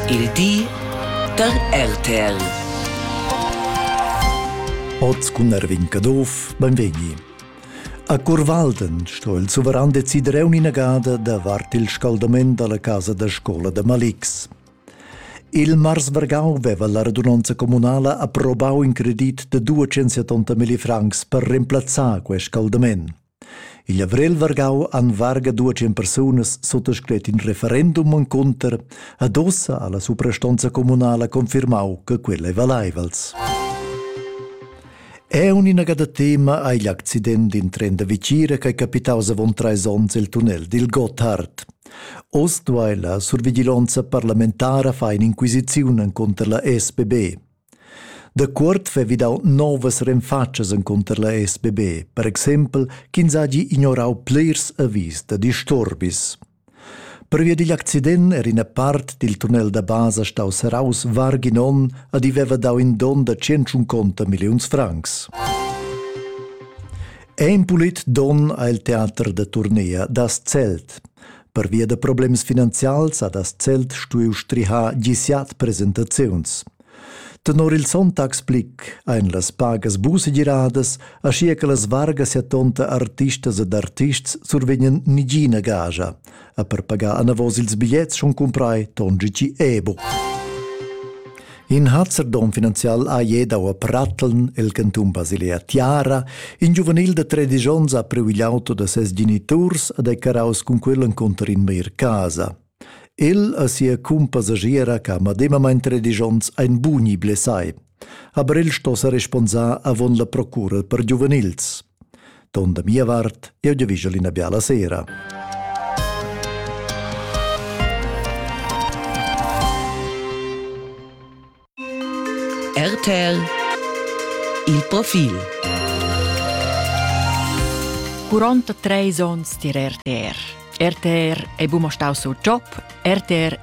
Il di da RTL. Oz cun Erwin Caduff, benvegni. A Curvalden sto il suveran decider un inagada davart il scaldament dalla casa da scola da Malix. Il Mars Vergau veva la radunanza comunala approbau in credit de 270.000 francs per remplazzar quest scaldament. Igl avrel vargau han varga duatschen persunas suttascret in referendum encunter ad ossa alla suprastonza communala confirmau che quella ei valeivels. È un inagada tema hai l'accident in tren da Vicira che è capitaus avon treis onns il tunnel dil Gotthard. Oz duai la survigilonza parlamentara far inquisiziun contro la SPB. Dacuort vevi dau novas renfatschas encunter la SBB, per exempel ch'ins hagi ignorau plirs avis da disturbis. Pervia digl accident era ina part dil tunnel da basa staus serraus varg in onn ed i veva dau in don da tschentschunconta milliuns francs. Ein pulit don ha il teater da turnea das Zelt. Pervia da problems finanzials ha das Zelt stuiu strihar gisiat presentaziuns. Tenor il Sonntagsblick ein las pagas busegiradas, aschia che las vargas e tonta artistas ed artists survegnan nigina gagia, a per pagar anavos ils bigliets schon cumprai Tongici Ebo. In hazzerdom finanzial ha ier dau a Pratteln, el cantun Basilea Tiara. In giuvenil de 13 onns ha priu igl auto da ses geniturs ad Eccaraus cun quel encunter in meir casa. El a sia cumpassagiera che ha medemamain 13 onns ein buni blessai. Aber el sto sa responsar avon la procura per giuvenils. Ton da mia vart, eu giavigel ina biala sera. RTL Il profil Curonta treis ons dir RTR. RTR è bumo stau sul job, RTR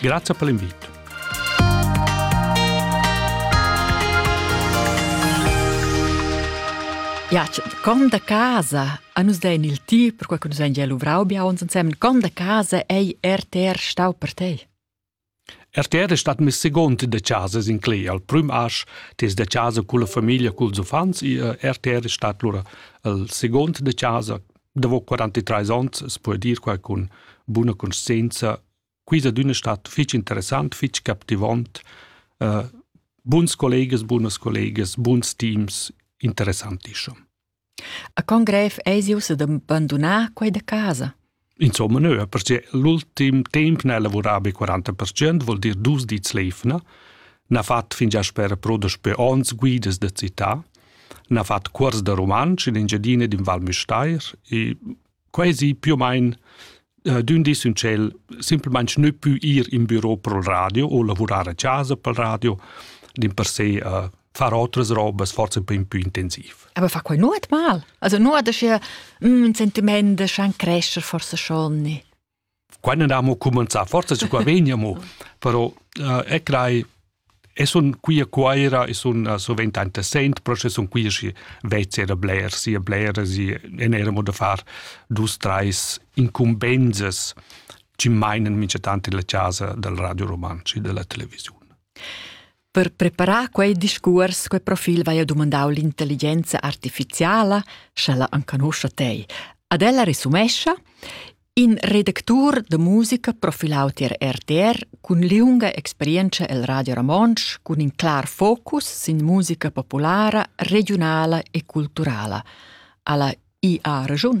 Grazie per l'invito. Ja, con da casa a nus dein il ti per quei che nus ein gia luvrau bia uns ensemen con da casa ei RTR stau per te RTR è stat mes segund de casa in Clei al prüm asch tes de casa culla famiglia culs uffants e eh, RTR è stat lura il segund de casa Davo 43 ons as po dir quai cun buna conscienza quisa d'üna stat fich interessant, fich captivant, uh, buns collegas, bunas collegas, buns teams, interessantischer. A con grev eis ius ad abandonar quei da casa? Insomma, no, perché l'ultim temp ne lavurava be 40%, vuol dir dus dits leifna, n'ha fat fingià sper pro daspö ons guidas da città, na fat cuors da rumantsch in Engiadina d'in Val Müstair e quasi più o meno uh, d'ün dis ün tschel simplesmente ne più ir in büro pro radio o lavurar a casa pel radio, din per se uh, far otras robas forse un po' più intensiv. Aber fa quai nuot mal. Also nuot da sche un mm, sentiment da schan crescer forse schon. Quai n'ha mo cumenzà forza su qua vegna mo, però e crai e sun qui a Cuaira e sun sovent interessant, però sche sun qui schi vez era bler, sia bler, si en era mo da far dus, treis incumbenzas chi mainen minchatant illa chasa dal Radio Rumantsch e della televisiun. Per preparar quei discuors, quei profil vai a dumandau l'intelligenza artificiala, sch'ella enconoscia tei. Ad ella resumescha in redactur de musica profilau tier RTR cun liunga experienza el Radio Ramonsch cun in clar focus sin musica populara, regionala e culturala. Alla IA Regiun.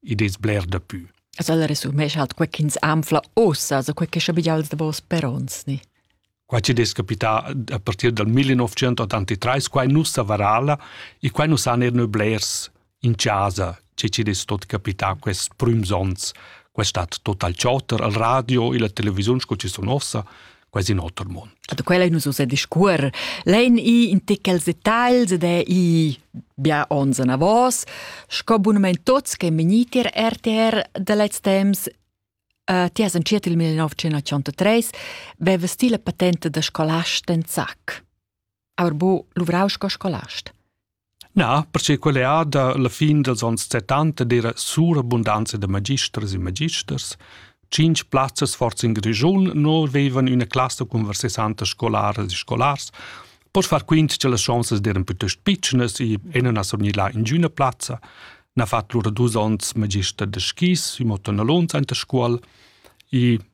id es bler dapü. As ella resumescha alt quai chi'ns anfla uossa, so quai che schabiglia'ls davos per ons ni? Quai chi'd es capità a partir dal 1983, quai nu savarala e quai nu san eir nö blers in chasa, che chi'd es tot capità quest prüms ons. Quai stat total chotter al radio e la televisiun sco chi sun ossa, quasi in oter mund. Da quella nus ussa discuor. Lein i in tichels detagls ed è i bia ons anavos, sco bunament tots che meniti RTR da lez temps Uh, ti has entschiet il 1983, veva stile patente da scolast en zac. aber bo luvrau sco scolast. Na, perché quella è da la fin dels ons 70 era surabundanza da magisters e magisters. Cinc plazzas forza in Grischun non avevan una classe con 60 scolares e scolars, pois far quint che las chances eran piuttosto pitschnas e ena a surgnir là in üna plazza. Na fatto lura dus ons magister de skis, i motto na lunz anta scuol, e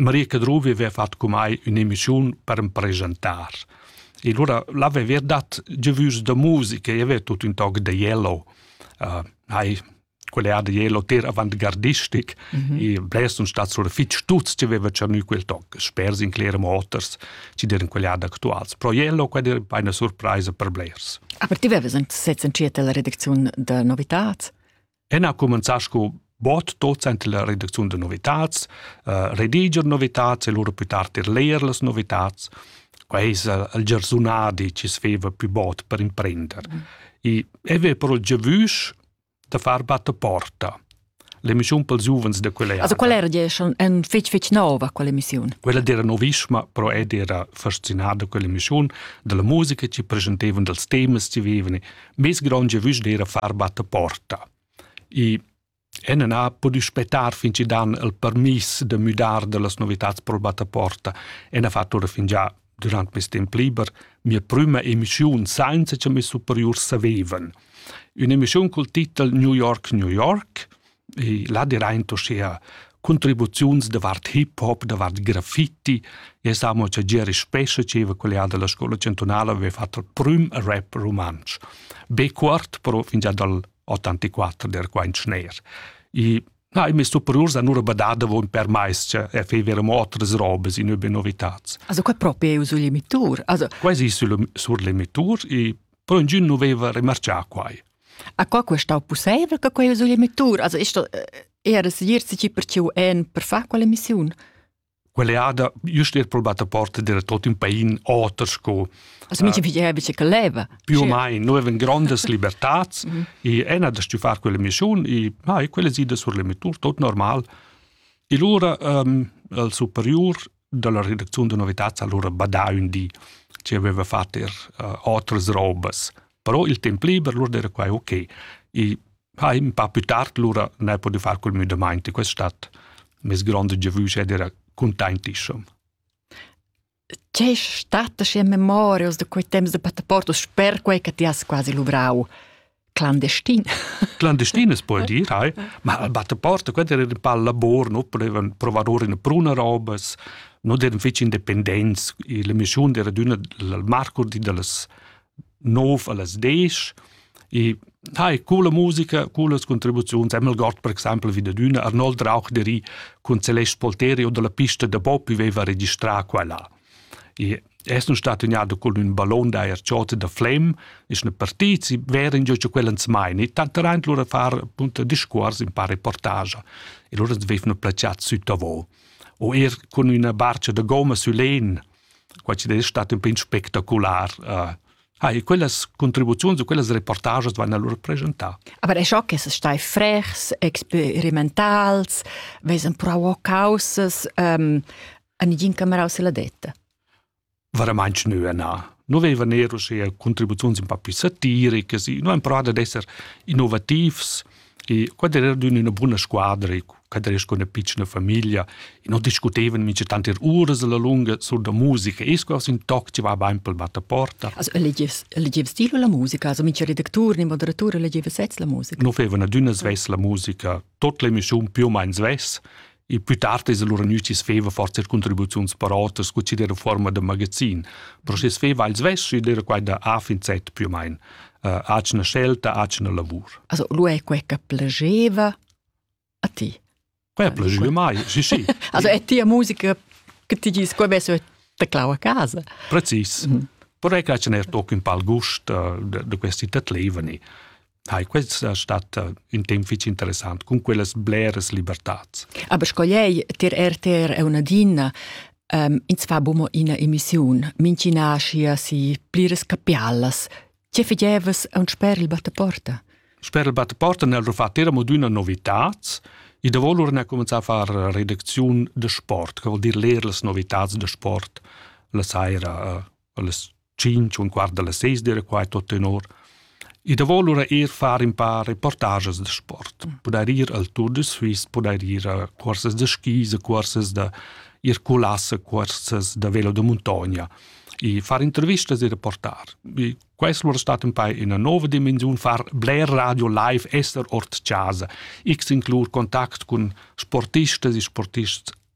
Maria Cadruvi aveva fatg con mai un'emissiun per presentar. E allora l'aveva dat giovus da musica e aveva tutto un toc da Yellow. Uh, hai quella da Yellow ter avant-gardistic mm -hmm. e bless un stat sur fitch tuts che aveva tschernü quel toc, spers in Claire Motors, ci deren quella da actuals. Pro Yellow quella era una surpresa per blers. Aber ti avevi anche sezza in la redaczione da novitats? En ha cumenzà sco bot docent la redacziun da novitads, uh, rediger novitads e lura più tard er leer las novitads. Quai es il giarsunadi chi sveva più bot per imprender. Mm. E eve però giavüsch da far battaporta. L'emissiun pels giuvens de quella Also quella era schon un fitch fitch nova quell'emissiun. Quella era novisma, però ed era fascinada quell'emissiun della musica che presentevano dels temas che vivevano Mes gronge vusch d'era far batta porta. I en na podi spetar fin ci dan il permis de müdar de las novitats pro batta porta e na fattura fin già durant mes temp liber mia prima emissiun sainza che mes superiurs savevan. Un'emissiun col titel New York, New York e là diraint uschea contribuziuns davart hip hop, davart graffiti. E samo cha Geri Spescha, dscheva collega della scola cantunala, aveva fatto il prüm rap rumantsch. Be cuort, però fingià dal 84 der quaint schner. E na, i messo superiurs hanno badada von per mais che e fevero otras robes in über novitats. Also qua proprio sul emitur, also quasi sul sur l'emitur e però ingin non aveva remarcià quai. Aqua que stau pusseivel che quei usigl emettur, also ist da era segir si per tiu en per far quella missiun. Quelle ada just er probata porta der tot in pain oter sco Also mi ci è bice che leva. più o meno noi avem grandes libertats e ena da stu far quella missiun e ah, e quelle sida sur l'emettur tot normal. E lura um, al superiur dalla redacziun da novitads allura badà ün di che aveva fatto er uh, otras robas. Però il temp liber lura era quai ok. E ha un po' più tard lura ne potuto far col müdamaint. Questo è stato mes grande giovüsch ed era contentissimo. C'è stata in memoria da quei temps de passaporto, sper quei che ti has quasi luvrau? clandestin. Clandestin es puoi dir, hai, ma al battaporta, quella era un pal lavor, no potevan provador in bruna robas, no eran fitch independents, la mission era d'una al marcur di dallas 9 allas 10, e hai coole musica, cooles contribuziuns, Emil Gott per exempel wie d'una, Arnold Rauch deri cun Celeste Polteri o dalla pista da Bob viveva registrà quella. E es nun stat gnada cun ün ballon d'ajer chota da flem, es üna partida, si verin giò cha quella ans maina e tanteraint lura far appunto discuors in par reportagia. E lura ans vefna placiat süttavo. O eir cun üna barcha da gomma sül len, quai chi'd es stat ün pin spectacular. Uh, Ah, e quellas contribuziuns e quellas reportages van allura preschentà. Aber è schock che stai frechs, experimentals, vesen prau causas, um, A nigin camerau se la detta. Veramente nu na. Nu veva nero sia contribuzions un po' più satiriche, nu en prada d'esser innovativs e quad era d'una buona squadra e quad era con una piccina famiglia e non discutevan mince tanti uras alla lunga sur da musica e sco un toc ci va bain pel battaporta. Also legies legies stilo la musica, also mince redactur ne moderatur legieva sez la musica. Nu fevana d'una svess la musica, tot l'emissiun più o meno svess Il plü tard es lura gnüts feva forsa contribuziuns per oters scu chi d'eira fuorma da magazin, però schi's feva al svess ed eira quai da A fin Z più o main. Uh, atgna scelta, atgna lavur. Also, lu è quei che piaceva a ti? Quei piaceva mai, sì, sì. also è tia musica che ti dici, quei avesse te clau a casa? Precis. Mm. Però è che ce n'è toc un pal gust uh, da questi tatlevani. hai questa stata un temp fitg interessant con quellas bleras libertats. Aber scogliei tir RTR è una dinna um, ins fa bumo ina emissiun, mincina sia si plires capialas. Che fidevas a un sper il battaporta? Sper il battaporta nel rufat era mod una novitat, e da volur ne cominciar a far redacziun de sport, che vuol dir leer les novitats de sport la saira, uh, les tschintg un quart dalla seis d'era quai tot tenor e davo lura eir far in paar reportages da sport pudair ir al Tour de Suisse pudair ir a cuorses da skis a cuorses da ir culas a cuorses da velo da muntogna e far intervistas e reportar. E questo lura stat un poi in una nuova dimensione, far bler radio live, esser ort casa, x inclur contact con sportistas e sportists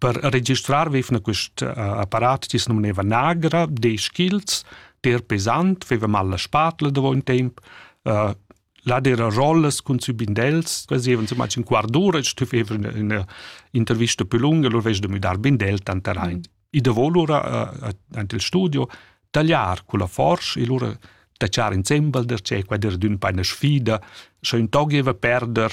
Per registrar vevna quest uh, apparat tis numneva Nagra, de skills, der pesant, veva mal la spatla da un temp, uh, là era rollas cun sü bindels, facevan insomma in quart d'ora, stu feva una, una intervista più lunga, lur vez de müdar bindel tanter ein. Mm. I da volura uh, ante il studio tagliar con la forsch e lura tachar insembel der cè, qua der d'ün paina sfida, sche un tog eva perder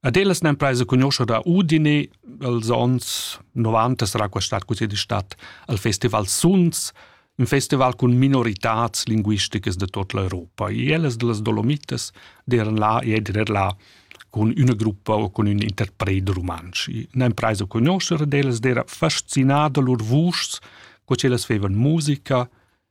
Ad ellas n'empresa conoscer da Udine, els onns 90 sarà quest'at così di stat al festival Suns, un festival con minoritats linguisticas de tot l'Europa. E ellas de las Dolomites deran là e eder là con una gruppa o con un interpret romansch. N'empresa conoscer ed ellas dera fascinada lur vuschs, co ellas fevan musica,